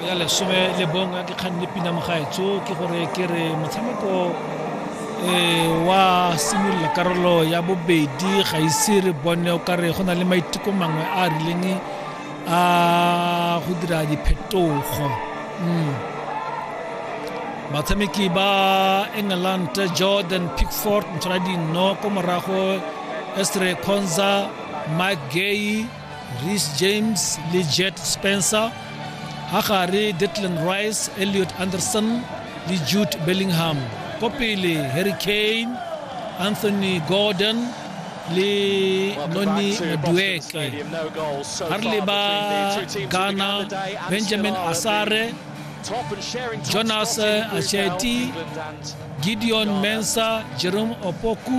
ya lesome le bong a ke kgang le pina mogaetso ke gore ke re motshameko eh, wa simolola karolo ya bobedi ga ise re bone o kare go na le maiteko mangwe a a rileng a go dira diphetogo mm. batshameki ba england jordan pickford ntshwara dinno ko morago estre conza mike gay reece james le jet spencer ga gare detland rice elliot anderson le jude bellingham ko pele harry kane anthony gordon le noni madueke ga re leba ghana benjamin asare jonas acheti gideon mensa jerome opoku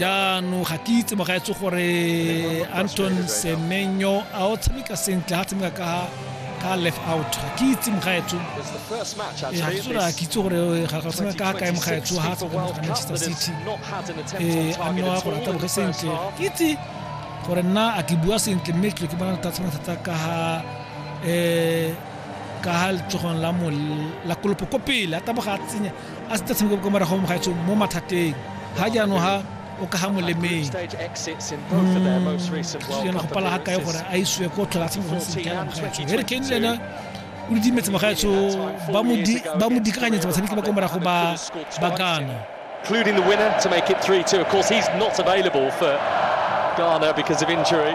jaanong ga ke itse mogaetse gore anton semenyo a o tshameka sentle ga tshameka ka ka left out ga ke itse mogaetso eh, ga ke tsola ke itse gore eh, ga ga tsena ka kae mogaetso ga tsa go ga Manchester City eh a nno a go rata boge sentle ke itse gore nna a ke bua sentle mme ke ke bona ta tsena thata ka ha eh ka ha letsogong la mo la kolopo ko pele a taboga a tsenya a se tshameka kwa morago mo gaetsong mo mathateng ga jaanong ga o ka ga molemeng yana go pala ga kae gore a isiwe ko tlhola tshameka gone sentle yana mogaetsong harry kane le ena o didimetse mogaetso ba mo dikaganyetsa batshameki ba kwa morago ba gana including the winner to make it 3-2. Of course, he's not available for Ghana because of injury.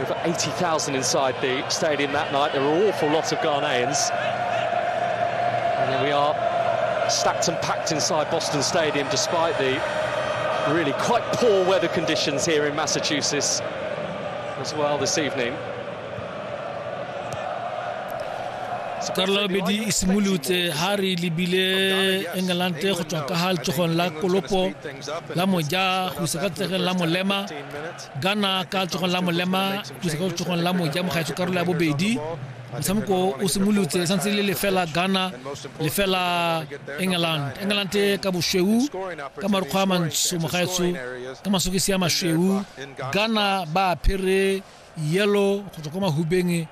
Over 80,000 inside the stadium that night. There were an awful lot of Ghanaians. And there we are, stacked and packed inside Boston Stadium, despite the really quite poor weather conditions here in Massachusetts as well this evening. Carlo Bedi e simolotse ha re lebile England go tswa ka ha letsogong la kolopo la moja go isa ka tsegeng la molema Ghana ka letsogong la molema tusa ka letsogong la moja mogaetso karolo ya bobedi motshameko o simolotse le santse le lefela ghana lefela england england ka bošweu ka marukgwa a mantsho mogaetso ka masokisi a mašweu ghana ba apere yellow go tswa kwa mahubeng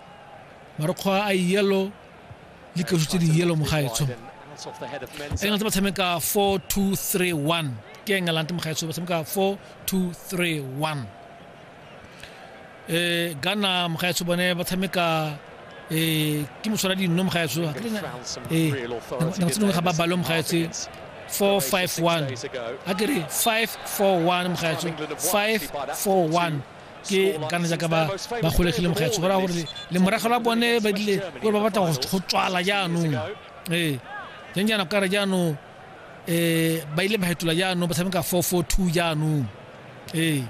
marukgwa a yellow le kaso tse di yelo mogaetsho england ba tshameka 4231 ke england mogaetsho ba tshameka 4231 eh gana mogaetsho bone ba tshameka eh ke moswara dinno mogaetsho eh nako tse dingwe ga ba balo mogaetsho 451 a ke re 541 mogaetsho 541 ke kana jaaka ba ba golegile mogaetsho go raya gore le morago la bone ba dile gore ba batla go tswala jaanong ee jang jaana kare jaanong um ba ile ba fetola jaanong ba tshameka four four two jaanong ee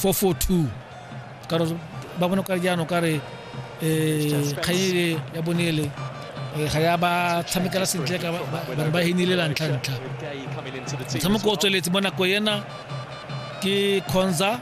four four two kare ba bone kare jaanong kare um kganyele ya bonele Eh, ga ya ba tshamekela sentle ka bane ba henile la ntlha-ntlha motshameko o tsweletse mo nako ena ke conza